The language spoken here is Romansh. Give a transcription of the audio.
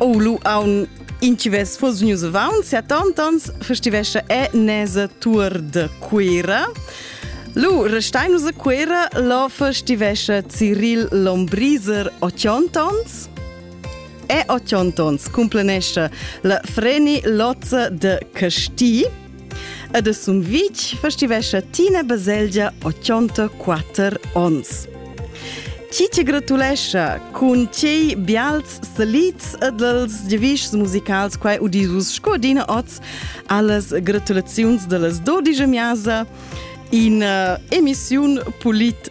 O lu aun inchives fos news avaunt sia tantans festivescha e nesa tour de Cuira. Lu restainus a Cuira lo festivescha Cyril Lombriser 80 ans e 80 ans cumplenescha la Freni Lozza de Casti Ed es un vitg festivescha Tina Baselgia 84 ons. Chi ti gratulescha cun tei bials salits ed els giavischs musicals quai udisus sco dina oz allas gratulaziuns dallas dodigia miasa in uh, emissiun Polit